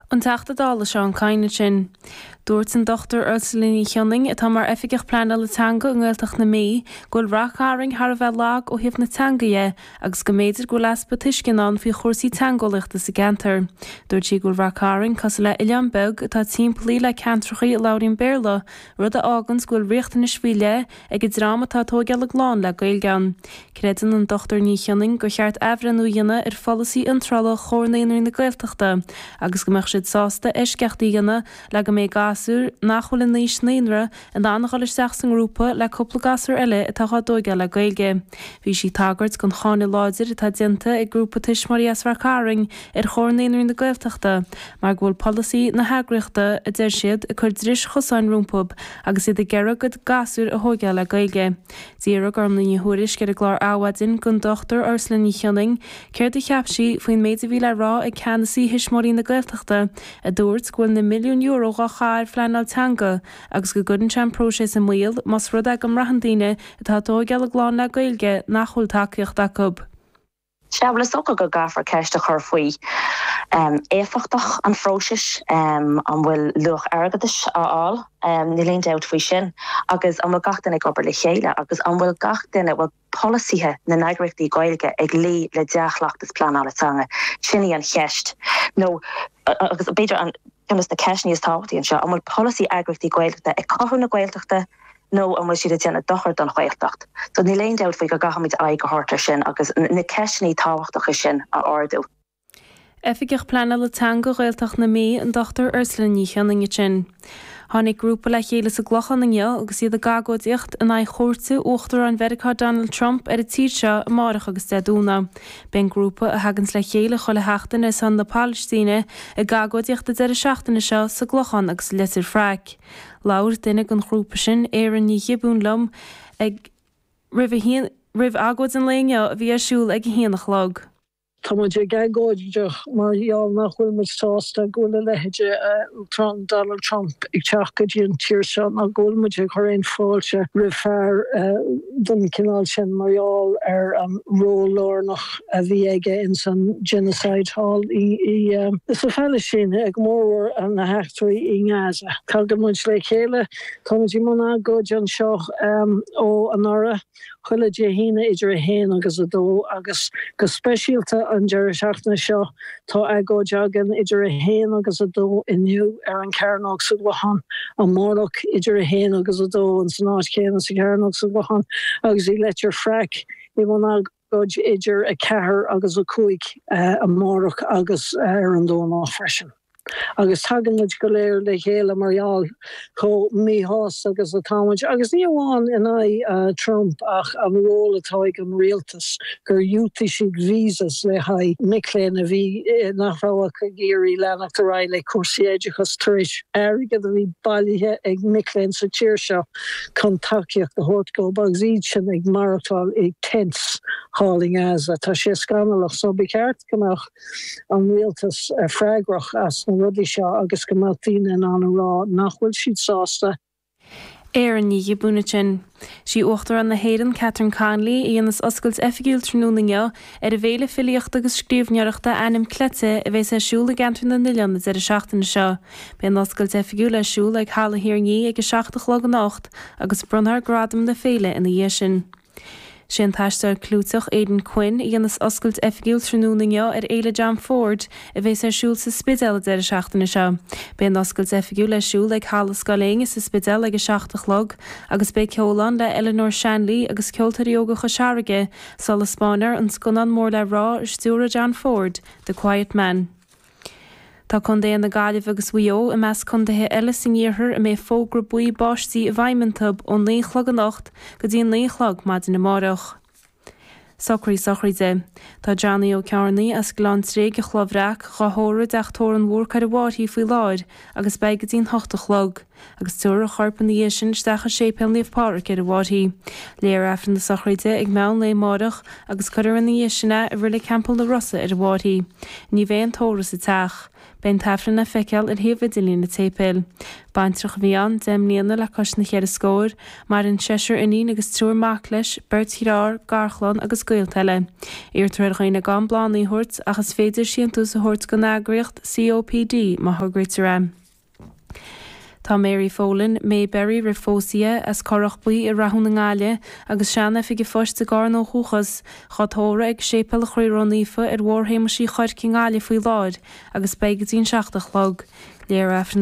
An Teachta Dála Seán Kyne ansin. Dúirt an Dr Ursula Ní Shionnain, atá mar Oifigeach Pleanála Teanga i nGaeltacht na Mí, go bhfuil Rath Cairn thar a bheith lag ó thaobh na teanga dhe agus go mb'fhéidir go bhfuil easpa tuisceana ann faoi chúrsaí teangeolaíochta sa gceantar. Dúirt sí go bhfuil Rath Cairn cosúil le oileán beag atá timpeallaithe le ceantrachaí a labhraíonn Béarla, rud a fháganns go bhfuil riachtanais faoi leith ag an dream atá tóigeáil a gclann le Gaeilge ann. Creideann an Dr Ní Shionnain gur cheart athbhreithniú a dhéanamh ar pholasaí iontrála Chomhar Naíonraí na Gaeltachta agus go mbeadh siad sásta eisceacht a dhéanamh le go mbeidh gasúir nach bhfuil in aois naíonra in ann a dhul isteach sa ngrúpa le cúpla gasúr eile atá dhá dtóigeáil le Gaeilge. Bhí sí ag tagairt don cháineadh láidir atá déanta ag grúpa tuismitheoirí as Rath Cairn ar Chomhar Naíonraí na Gaeltachta mar go bhfuil polasaí na heagraíochta, a deir siad, ag cur dris chosáin rompu agus iad ag iarraidh a gcuid gasúr a thóigeáil le Gaeilge. D'fhiafraigh Gormfhlaith Ní Thuairisg ar an gclár Adhmhaidin gon Dr Ursula Ní Shionnain céard a cheap sí faoin méid a bhí le rá ag ceannasaí Thuismitheoirí na Gaeltachta a dúirt go bhfuil na milliúin euro dhá gcaitheamh ar phleanáil teanga agus go gcuireann sé an próiseas i mbaol más rud é go mbraitheann daoine atá ag tóigeáil a gclann le Gaeilge nach bhfuil tacaíocht acu. Sea, bhuel, is dócha go gcaithfear ceist a chur faoi éifeachtacht an phróisis. An bhfuil luach airgeadais á fháil? Níl aon dabht faoi sin. Agus an bhfuil gach duine ag obair le chéile? Agus an bhfuil gach duine, bhfuil polasaithe na n-eagraíochtaí Gaeilge ag luí le dea-chleachtas pleanála teanga? Sin í an cheist. Nó, agus b'fhéidir ceann de na ceisteanna is tábhachtaí anseo, an bhfuil polasaí eagraíochtaí Gaeltachta ag cothú na Gaeltachta, Nó an bhfuil siad ag déanamh dochair don Ghaeltacht? So níl aon dabht faoi go gcaithfimid aghaidh a thabhairt air sin agus na ceisteanna tábhachtacha sin a ardú. Oifigeach Pleanála Teanga Ghaeltacht na Mí, an Dr Ursula Ní Shionnain, ansin. Tháinig grúpa le chéile sa gClochán inniu agus iad ag agóidíocht in aghaidh chuairte Uachtarán Mheiriceá Donald Trump ar an tír seo amárach agus Dé Domhnaigh. Beidh an grúpa, a thaganns le chéile chuile sheachtain ar son na Palaistíne, ag agóidíocht an deireadh seachtaine seo sa gClochán agus i Leitir Fraic. Labhair duine den ghrúpa sin, Érin Ní Ghiobúin liom roimh agóid an lae inniu a bhí ar siúl ag a haon a chlog. Tá muid ag agóidíocht mar gheall nach bhfuil muid sásta go bhfuil a leithéid de Uachtarán, Donald Trump, ag teacht go dtí an tír seo ná go bhfuil muid ag cur aon fáilte roimh fear den chineál sin mar gheall ar an ról lárnach a bhí aige ins an Genocide thall sa Phalaistín, go mórmhór na. eachtraí i nGaza. Tagaimid le chéile, táimid i mbun agóide anseo ó anuraidh, chuile Dé hAoine idir 1 agus 2, agus go speisialta an deireadh seachtaine seo, tá agóid againn idir 1 agus 2 inniu ar an Chearnóg sa gClochán, amárach idir 1 agus 2 in san áit chéanna sa Chearnóg sa gClochán, agus i Leitir Fraic i mbun agóide. Agóid idir 4 agus 5 amárach agus ar an Domhnach freisin. Agus tagann muid go léir le chéile mar gheall chomh míshásta agus atá muid, agus ní amháin in aghaidh Trump ach an ról atá ag an rialtas, gur dhiúltaigh siad visas le haghaidh mic léinn a bhí, nach raibh ach ag iarraidh leanacht ar aghaidh le cúrsaí oideachais tar éis airgead a bhí bailithe ag mic léinn sa tír seo. chun tacaíocht a thabhairt dhób agus iad sin ag maireachtáil i 'tents' thall i nGaza. Tá sé scannalach so ba cheart go mbeadh an rialtas freagrach as na rudaí seo agus go mbeadh daoine in ann a rá nach bhfuil siad sásta. Erin Ní Ghiobúin ansin. Sí Uachtarán na hÉireann, Catherine Connolly, a dhéanas oscailt oifigiúil tráthnóna inniu ar an bhféile filíochta agus scríbhneoireachta Ainm Cleite a bhéas ar siúl i gCeantar na nOileán an deireadh seachtaine seo. Beidh an oscailt oifigiúil ar siúl ag Halla Thír an Fhia ag a seacht a chlog anocht agus bronnfar gradaim na féile ina dhiaidh sin. Sé an t-aisteoir clúiteach Aidan Quinn a dhéanas oscailt oifigiúil tráthnóna inniu ar Fhéile John Ford a bhéas ar siúl sa Spidéal an deireadh seachtaine seo. Beidh an oscailt oifigiúil ar siúl ag Halla Scoil Éinne sa Spidéal ag a seacht a chlog agus beidh ceol ann le Eleanor Shanley agus Ceoltóirí Óga Chois Fharraige, sula spáinfear an scannán mór le rá a stiúraigh John Ford, The Quiet Man. Tá contaetha na Gaillimhe agus Mhaigh Eo i measc contaetha eile san iarthar a mbeidh fógra buí báistí i bhfeidhm iontu ó naoi a chlog anocht go dtí a naoi a chlog maidin amárach. Socruithe sochraide. Tá Johnny Ó Cearnaigh as Gleann Tréig an Chloch Bhreac dhá thórramh ag teach tórraimh an Bhúrcaigh ar an bhFairche faoi láthair agus beidh go dtí an hocht a chlog. agus tabharfar a chorp ina dhiaidh sin isteach i Séipéal Naomh Pádraig ar an bhFairche. Léifear Aifreann na sochraide ag meán lae amáireach agus cuirfear ina dhiaidh sin é i Reilig Theampall na Rosa ar an bhFairche. Ní bheidh aon tórramh sa teach. Beidh an tAifreann le feiceáil ar shuíomh idirlín an tséipéil. Baintreach a bhí ann, deich mbliana le cois na ceithre scór. Maireann seisear iníon agus triúr mac leis, beirt dhearthár, garchlann agus gaolta eile. Iarrtar ar dhaoine gan bláthannaí a thabhairt ach is féidir síntiús a thabhairt don eagraíocht COPD má thograítear é. Tá Mary Folan, Mayberry roimh phósadh di, as Corrach Buí i Rathún i nGaillimh agus sean-oifig an phoist i gCarna ó dhúchas, dhá tórramh ag Séipéal an Chroí Ró-Naofa ar Bhóthar Shéamuis Uí Chuirc i nGaillimh faoi láthair agus beidh go dtí an seacht a chlog. Léifear Aifreann.